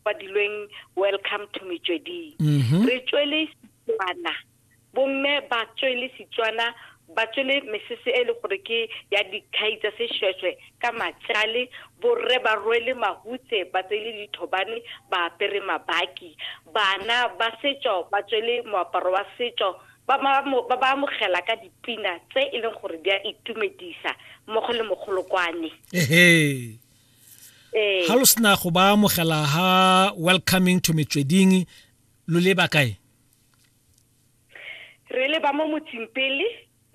badilweng welcome to metsweding mhm. re tswele setswana bomme ba tswele setswana ba tswele mesese e le gore ke ya dikhai tsa seshweshwe ka matsale borre ba rwele mahutse ba tsele dithobane ba apere mabaki bana ba setso ba tswele moaparo wa setso ba ba amogela ka dipina tse e leng gore di a itumedisa mmogo le mogolokwane ga lo sena go ba amogela ha welcoming to metsweding lo leba kae re leba mo motseng pele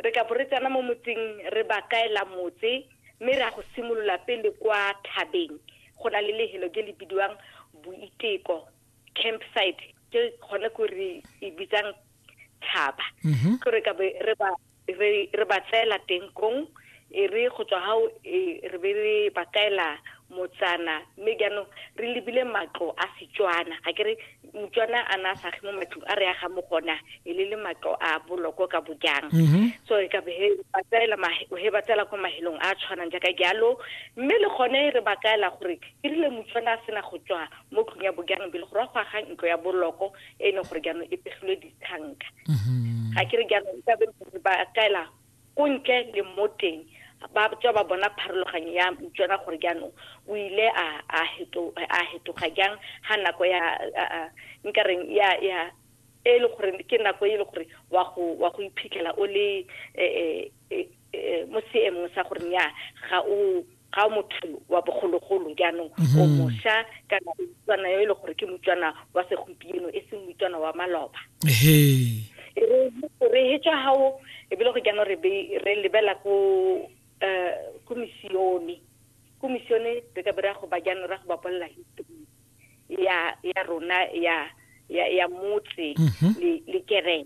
re ka bo re tsena mo motseng re ba kaela motse mme re ya go simolola pele kwa thabeng go na le lehelo ke le bidiwang boiteko campsite ke gone ko re e bitsang thaba mhm. ke re ka re ba re re ba tseela teng kong e re go tswa gao e re be re ba kaela motsana mme jaanong re lebile matlo a setswana ga ke re motswana a na a sage mo matlong a re aga mo gona e le le matlo a boloko ka bojang mm-hmm. so e ka be he ba tsela ko mahelong a tshwanang jaaka jalo mme le gone re ba kaela gore e rile motswana a sena go tswa mo tlong ya bojang bele go ra go agang ntlo ya boloko e e leng gore jaanong e pegilwe ditanka mm-hmm. ga ke re jaanong e kabe ba kaela ko ntle le mo teng ba tswa ba bona pharologanyo ya tsona gore jaanong o ile a hetoga jang ga nako ya nkareng ya ya e le gore ke nako e le gore wa go wa go iphitlhela o le e, e, e, e, mo seemong sa gore nya ga o ga motho wa bogologolo jaanong o mhm. mosha kana o tswana yo e le gore ke motswana wa segompieno e seng motswana wa maloba e re he tswa hao e bile go jaanong re re lebela ko eh ko misione ko misione re ka bera go ba jaanong ra go ba bolela history ya ya rona ya ya ya motse mhm. le le kereng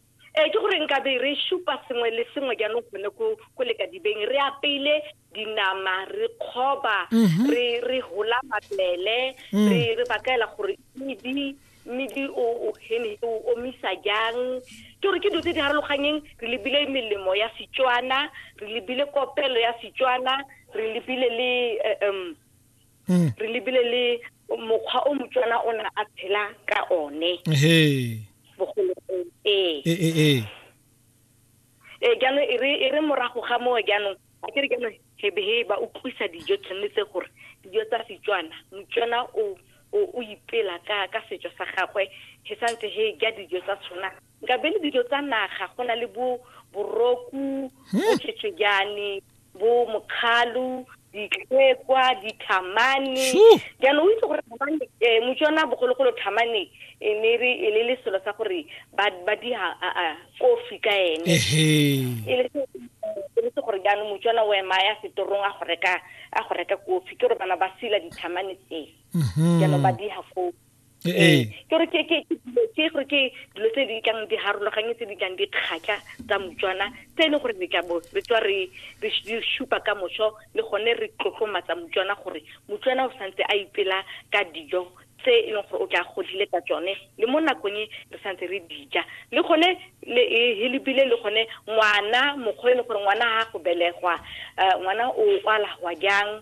ee ke gore nkabe re supa sengwe le sengwe jaanong gone ko lekadibeng re apeile dinama re kgoba mhm. re hola mabele mm. re bakaela gore medi medi o hene o omisa jang ke gore ke dilo tse di harologanyeng re lebile melemo ya setswana re lebile kopelo ya setswana re lebile le eh, um mm. re lebile le mokgwa o motswana o na a phela ka one bogologolo ee ee ee ee, ee jaanong e, e re morago ga moo jaanong a ke re jaanong hebehe ba utlwisa dijo tshwanetse gore dijo tsa setswana motswana o o ipela ka ka setso sa gagwe he santse he ja dijo tsa tshwana nkabe le dijo tsa naga go na le bo boroku bo tšhetšhejane bo mokgalo ditlhekwa dithamane jaanong o itse gore thamane eh, motswana bogologolo thamane e ne re e ne le selo sa gore ba ba di ha a- a, kofi ka ene ehe e le se- e le se gore jaanong motswana o ema ya setorong a go reka a go reka kofi ke gore bana ba sila dithamane tse jaanong ba diha foo ee. ee ke gore ke ke ke gore ke dilo tse di tlang di harologanye tse di tlang di kgatlha tsa motswana tse e leng gore re tla bo re tswa re re supa ka moso le gone re tlotlomatsa motswana gore motswana o santse a ipela ka dijo tse e leng gore o tla godile ka tsone le mo nakong e re santse re dija le gone le helebile le gone ngwana mokgwa e leng gore ngwana ga go belegwa eh, ngwana o kwalagwa jang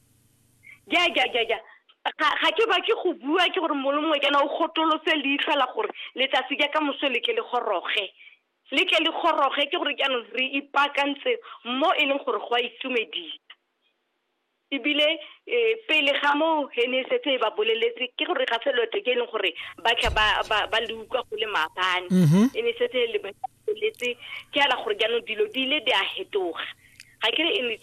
ja ja ja ja ga ga ke ba ke go bua ke gore molo mongwe kana o gotolose leitlho la gore letsatsi ja ka moso le ke le goroge le ke le goroge ke gore jaanong re ipaakantse mo e leng gore go a itumedisa ebile um pele ga moo he ne e setse e ba boleletse ke gore ga selo te ke e leng gore ba tla ba- ba ba le utlwa go le maabane Mhm. e ne e setse e le ba boleletse ke ala gore jaanong dilo di ile di a hetoga ga ke re e ne